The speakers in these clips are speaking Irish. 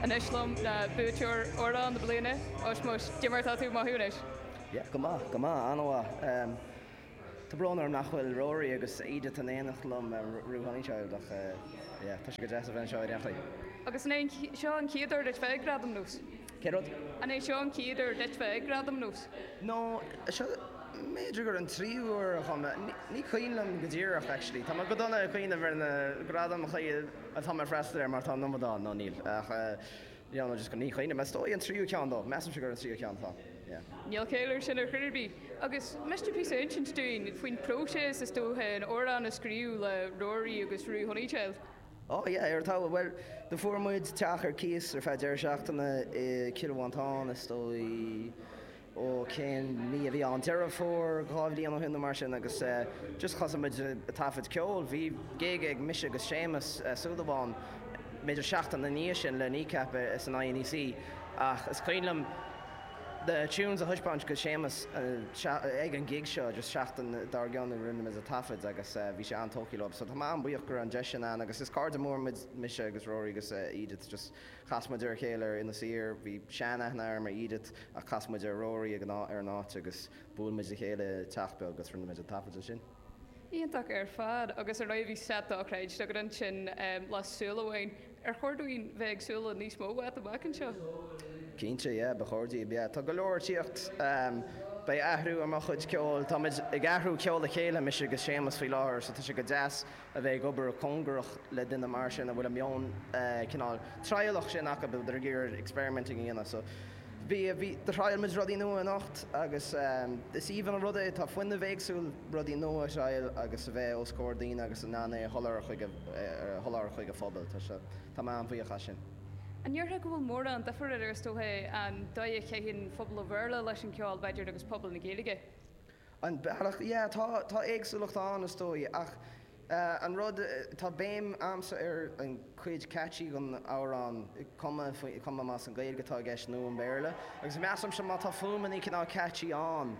Anois liom le buaiteoir Amhrán na Bliana, Ushmush, caidé mar atá tú? Maith anois? Yeah, go maith, go maith, an-mhaith. Tá brón orm nach bhfuil Rory agus Edith in éineacht liom or Roo Honeychild ach yeah, tá sé go deas a bheith anseo i ndáiríre. Agus an é seo an chéad uair duit bheith ag Gradaim Nós? Cén rud? An é seo an chéad uair duit bheith ag Gradaim Nós? No, seo, b'fhéidir gur an tríú uair a chuaigh mé. Ní cuimhin liom go díreach, actually. Tá mé go dona ag cuimhneamh ar na Gradaim chaoi atá mé ag freastal air mar tá an iomad ann, nó níl. Ach, yeah, no, just ní chuimhnim. Is dóigh an tríú ceann dó. Measaimse gur an tríú ceann atá, yeah. Níl caill air sin ar chor ar bith. Agus miste píosa a insint dúinn faoin phróiseas, is dócha, an amhrán a scríobh le Rory agus Roo Honeychild? Oh yeah, ar talamh. Bhuel, do fuair muid teach ar cíos ar feadh deireadh seachtaine i Cill Mhantáin, is dóigh, ó cén mí a bhí ann, Deireadh Fómhair dhá bhliain ó shin nó mar sin agus eh just thosaigh muid a' taifead ceoil, bhí gig ag mise agus Séamus Súilleabháin b'fhéidir seachtain ina dhiaidh sin le Kneecap san INEC ach is cuimhin liom na tunes a thaispeáint go Séamus ag an gig seo agus seachtain dár gcionn rinne muid a taifead agus bhí sé an-tógtha leo so tá mé an-bhuíoch go raibh an deis sin ann agus is cairde mór muid mise agus Rory agus Edith just chas muid ar a chéile ar Inis Oírr bhí sean-aithne agam ar Edith ach chas muid ar Rory ag an áit agus bhuail muid le chéile i teach beag agus rinne muid an taifead ansin. Iontach ar fad. Agus ar ndóigh bhí set dochreidte agat ansin le Súil Amháin. Ar chóir dúinn bheith ag súil le níos mó uait amach anseo? Cinnte, yeah, ba chóir daoibh, yeah. Tá go leor ag tíocht. Beidh athrú ar mo chuid ceoil. Táimid ag athrú ceol le chéile, mise agus Séamus faoi láthair, so tá sé go deas a bheith ag obair cóngarach le duine mar sin a bhfuil an meon cineál trialach sin acu, a bheith ag iarraidh experimenting a dhéanamh, so. Bhí, bhí, do thriail muid rudaí nua anocht agus is aoibhinn an rud é, tá fuinneamh éagsúil rudaí nua a thriail agus a bheith os comhair daoine agus in ann é a sholáthar chuig a, a sholáthar chuig an phobail. Tá sé, tá mé an-bhuíoch as sin. An ndéarfá go bhfuil mórán duifir idir, is dócha, an dóigh a chaitheann pobal an Bhéarla leis an gceol, b'fhéidir, agus pobal na Gaeilge? An bealach? Yeah, tá, tá éagsúlacht ann, is dóigh, ach eh, an rud, tá béim a'msa ar an chuid catchy den amhrán, cuma, cuma más an Gaeilge atá i gceist nó an Béarla, agus measaimse má tá fuaimeannaí cineál catchy ann,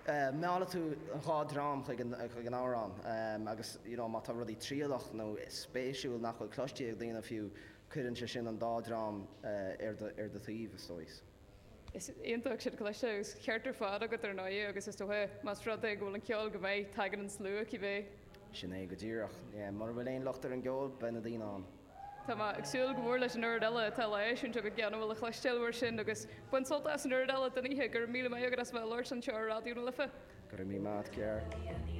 eh, meallfaidh tú an dhá dhream chuig an, chuig an amhrán, eh, agus, you know, má tá rudaí trialach nó spéisiúil nach bhfuil cloiste ag daoine fiú, cuireann sé sin an dá dhream, eh, ar do, ar do thaobh, is dóigh. Is iontach sin a chloisteáil agus is ceart ar fad agat ar ndóigh agus is dócha más rud é go bhfuil an ceol go maith tagann an slua cibé. Sin é go díreach. Mura bhfuil aon locht ar an gceol beidh na daoine ann. Tá mé ag súil go mór leis an oiread eile atá le heisiúint agat gan a bhfuil le cloisteáil mar sin agus bain sult as an oiread eile den oíche. Go raibh míle maith agat as bheith ag labhairt anseo ar Raidió na Life. Go raibh míle maith a't Ger.